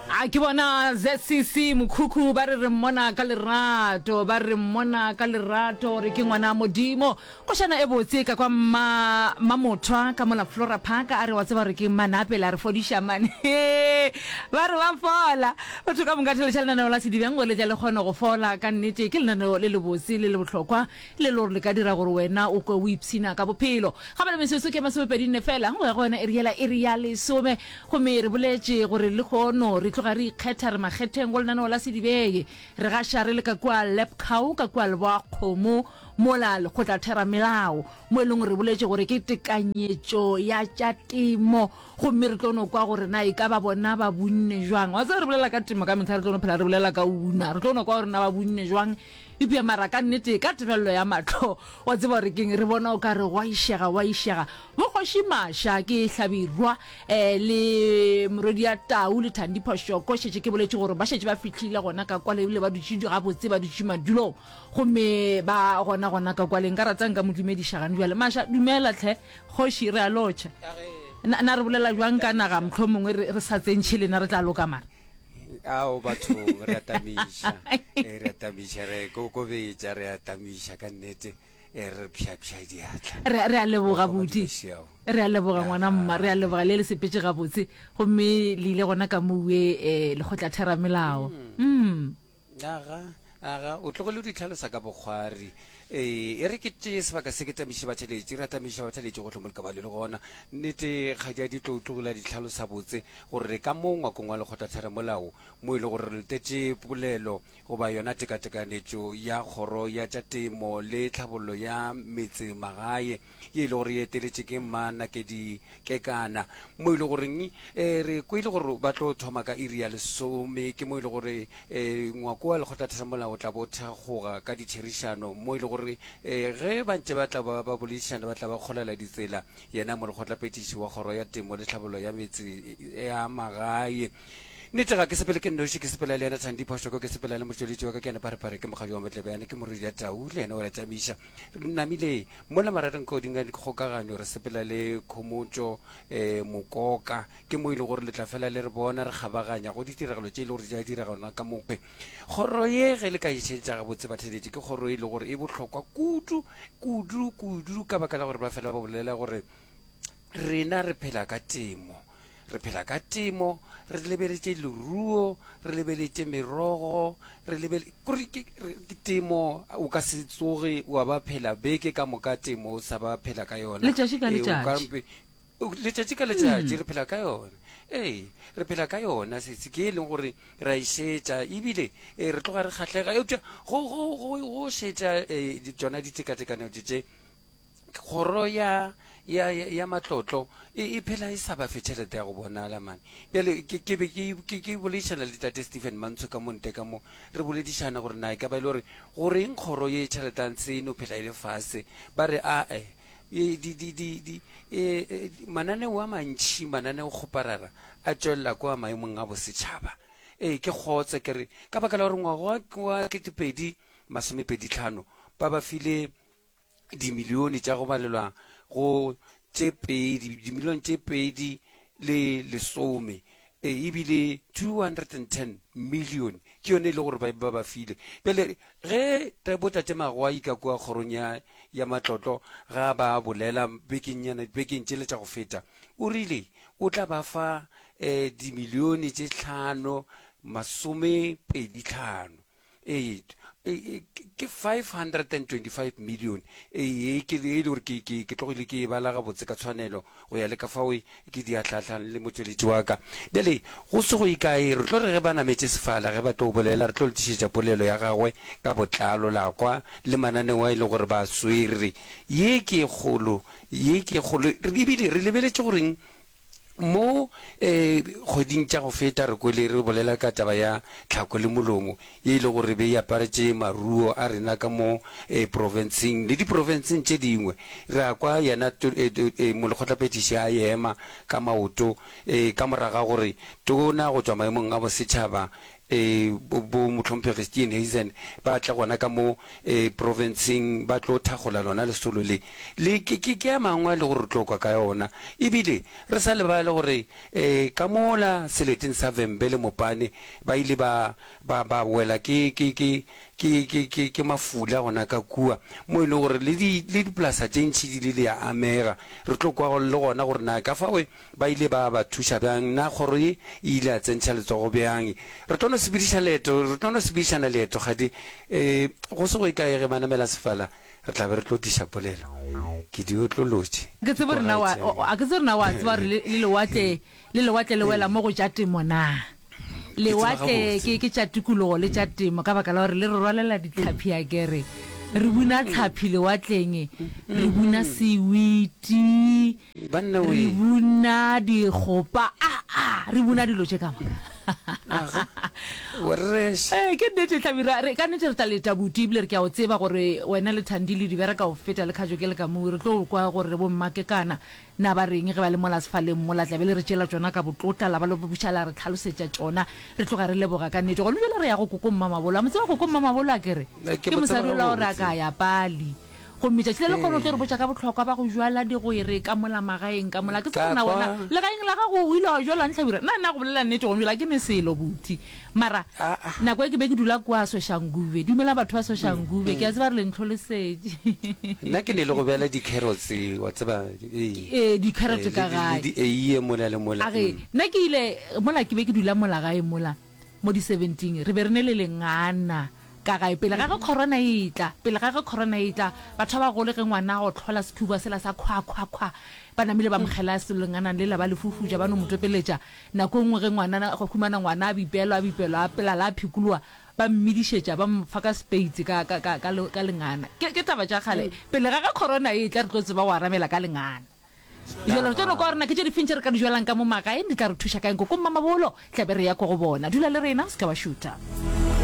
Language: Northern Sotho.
A ke bona zcc mokhukhu ba re re mmona ka lerato ba re mmona ka lerato gore ke ngwana modimo košana e botse ka kwa mma mamothwa ka mola flora park a re wa tseba gore ke manapele a re fodiša mane he ba re ba fola batho ka moka theletša lenaneo la sedibeng go letša le kgone go fola ka nnete ke lenaneo le lebotse le le bohlokwa le lore le ka dira gore wena o kwe o ipshina ka bophelo. Kgabele metsotso ke masomepedi nne fela go ya go yona e riela iri ya lesome, gomme re boletše gore lehono re tloga re ikgetha re makgetheng go lenaneo la sedibeng. Re gaša re le ka kua Lapcow, ka kua Leboakgomo, mola lekgotlatheramelao, mo e lego re boletše gore ke tekanyetšo ya tša temo, gomme re tlo no kwa gore na e ka ba bona ba bunne jwang. Wa tseba re bolela ka temo ka mehla, re tlo no phela re bolela ka una, re tlo no kwa gore na ba bunne jwang. Eupša mara ka nnete, ka tebello ya mahlo, wa tseba gore keng, re bona o ka re go a išega, go a išega. Bo Kgoši Masha, ke Hlabirwa, eh, le Morwedia Tau le Thandi Phoshoko, šetše ke boletše gore ba šetše ba fihlile gona ka kwale ebile ba dutše gabotse, ba dutše madulong gomme ba gona gona ka kwale. Nka rata nka mo dumediša gane bjale. Masha, dumela tlhe. Kgoši, re a lotšha. Na, na re bolela bjang ka naga, mohlomongwe re, re sa tsentšhe lena re tla loka mara? ao batho re atamiša eh, re atamiša re kokobetša re atamiša ka nnete eh, re pšhapša diatla re re a leboga Go buti Madibesiao. re a leboga ngwana mma re a leboga le le sepetse gabotse gomme le ile gona ka moue um lekgotla theramelao mm Aga, aga, o tlogele o di tlhalosa ka bokgwari. Ee, e re ke tee sebaka se ke tamiše batšheletši, ra tamiša batšheletši gohle mo likabalio le gona. Nnete ga di a di tlo tlogela di tlhalosa botse gore ka mo ngwakong wa lekgotlatheramolao mo e le gore re lotetše polelo goba yona tekatekanetšo ya kgoro ya tša temo le tlhabollo ya metse magae, ye e le gore e eteletše ke mma Nakedi Kekana, mo e le goreng e re kwele gore ba tlo thoma ka iri ya lesome, ke mo e le gore e ngwako wa lekgotlatheramolao o tla bo thakgoga ka ditherišano mo e le gore e ge ba ntše ba tla ba boledišana ba tla ba kgolela ditsela. Yena molekgotlaphethiši wa kgoro ya temo le tlhabollo ya metse ya magae, Nnete ga ke sepele ke nnoši, ke sepela le yena Thandi Phoshoko, ke sepela le motšweletši wa ka ke yena Pharephare, ke mokgadi wa Matlebjane, ke Morwedi ya Tau le yena o a tšamiša. Re namile mola marageng ka godimo ga dikgokaganyo, re sepela le khomotšo um mokoka. Ke mo e le gore le tla fela le re bona re kgabaganya go ditiragalo tše e le gore di tla diraganwa ka mokgwe. Kgoro ye, ge le ka e šetša gabotse, batheeletši ke kgoro e le gore e bohlokwa kudu, kudu, kudu ka baka la gore ba fela ba bolela gore, Rena re phela ka temo, re phela ka temo, re lebeletše leruo, re lebeletše merogo, re lebele kore ke ke temo o ka se tsoge wa ba phela beke ka moka temo o sa ba phela ka yona. Letšatši ka Ee, o ka letšatši. mpe- o- letšatši ka letšatši re phela ka yona ee re phela ka yona sesi ke e leng gore ra e šetša ebile eh, re tloga re kgahlega eupša go go- go- go šetša um tsona ditekatekanyo tše tše kgoro ya ya ya, ya matlotlo e, e phela e sa ba fe tšhelete ya go bonala mane bjale ke ke be ke ke- ke boledišana le tate stephen mantsho ka monte ka mo re boledišana gore na e ka ba e le gore goreng kgoro ye tšheletang se e no phela e le fase ba re ae e, di, di, di, di, e, e, di- mananeo a mantšhi mananeo kgoparara a tšwelela kwa maemong a bosetšhaba ee ke kgotse ke re ka baka la gore ngwaga wa- wa ketepedi masomepeditlhano ba ba file dimilione tša go balelwa go tše pedi dimilione tše pedi le lesome e, ebile 210 million ke yone e le gore ba ba file bjale ge botate magoa ika kua kgorong ya ya matlotlo ga ba bolela bekennyana bekeng tšele tša go feta o rile o tla ba fa um dimilione tše tlhano masome pedi tlhano ee ke 525 million ee ke le gore ke ke ke tlogile ke e bala ga botse ka tshwanelo go ya le ka fao ke di atlhatlhang le motsweletši wa ka bjale go se go ikae re tlo re ge ba nametše sefala ge ba tlo bolela re tlo le tlišetša polelo ya gagwe ka botlalo la kwa le mananeo a e le gore ba swere ye ke kgolo ye ke kgolo ebile re lebeletše goreng Mo kgweding tša go feta re kwele re bolela ka taba ya tlhako le molomo ye e le gore be e aparetše maruo a rena ka mo profenseng le diprofenseng tše dingwe. Re a kwa yena molekgotlaphethiši a ema ka maoto ka morago ga gore tona go tšwa maemong a bosetšhaba bo Mohlomphegi Steenhuisen ba tle gona ka mo profenseng ba tlo thagola lona lesolo le. Le ke, ke, ke a mangwe a le gore re tlo kwa ka ona. E bile re sa lebale gore ka mola seleteng sa Vhembe le Mopane ba ile ba, ba, ba wela ke, ke, ke, ke, ke, ke, ke mafula gona ka kua, mo e lego gore le di, le dipolasa tše ntši di ile di a amega. Re tlo kwa le gona gore na ka fao Ba ile ba ba thuša bjang, na kgoro ye e ile ya tsentšha letsogo bjang? Re tlo no sepediša leeto, re tlo no sepedišana leeto, kgadi. E, go se go e kae ge ba namela sefala, re tla be re tlo tliša polelo. Ke di otlolotše, Ke tsebe gore na wa, o, o, a ke tsebe gore na wa tseba gore le, le lewatle, le lewatle le wela mo go tša temo na? Lewatle ke ke tša tikologo le tša temo ka baka la gore le re rwalela ditlhaphi a kere re buna tlhaphi lewatleng re buna sewiti re buna dikgopa a a re buna dilo tše ka moka ee ke nnete tlhabi ra re ka nnete re tla leta buti ebile re ke a o tseba gore wena le thandi le dibera ka o feta le kgajo ke le ka moo re tlo kwa gore bo mmake kana Na ba reng ge ba le mola sefaleng mola? Tla be le re tšeela tšona ka botlotla, la ba le buša la re tlhalosetša tšona, re tloga re leboga ka nnete. Gona bjale re ya go Koko Mmamabolo. A mo tseba Koko Mmamabolo? A ke re ke mosadi ola o re a ka ya pali. Gomme tšatši le lekgolo o tlo re botša ka bohlokwa ba go jwala digwere ka mola magaeng ka mola. Ke tsebe gore na wena legaeng la gago o ile wa jwala ntlhabira? Na, na go bolela nnete gona bjale ga ke ne selo, Buti. Mara nako e ke be ke dula kwa Soshanguve. Dumela batho ba Soshanguve. Ke a tseba re le ntlholosetše. Nna ke ne le go beela di-carrots, wa tseba, ee, Ee, di-carrot ka gae. Le di-eiye mola le mola. A re, nna ke ile, mola ke be ke dula mola gae mola, mo di-seventy-ing, re be re ne le lengana ka gae pele ga ge Corona e tla. Pele ga ge Corona e tla, batho ba bagolo ge ngwana a gotlhola sekhubwa sela sa khwa-khwa-khwa, ba namile ba mo kgela lengana lela, ba le fufuja, ba no mo topeletša. Nako e nngwe ge ngwanana a humana ngwana a bipelwa, a bipelwa a pelala, a phikolowa, ba mmedišetša, ba mo fa ka sepeitse ka, ka, ka, ka, ka lengana. Ke, ke taba tša kgale. Pele ga ge Corona e etla, re tlo tseba go arabela ka lengana. Bjale re tlo no kwa gore na ke tše difeng tše re ka di jwalang ka mo magaeng, di tla re thuša kae. Nkoko Mmamabolo, tla be re ya ko go bona. Dula le rena, o se ke wa šutha.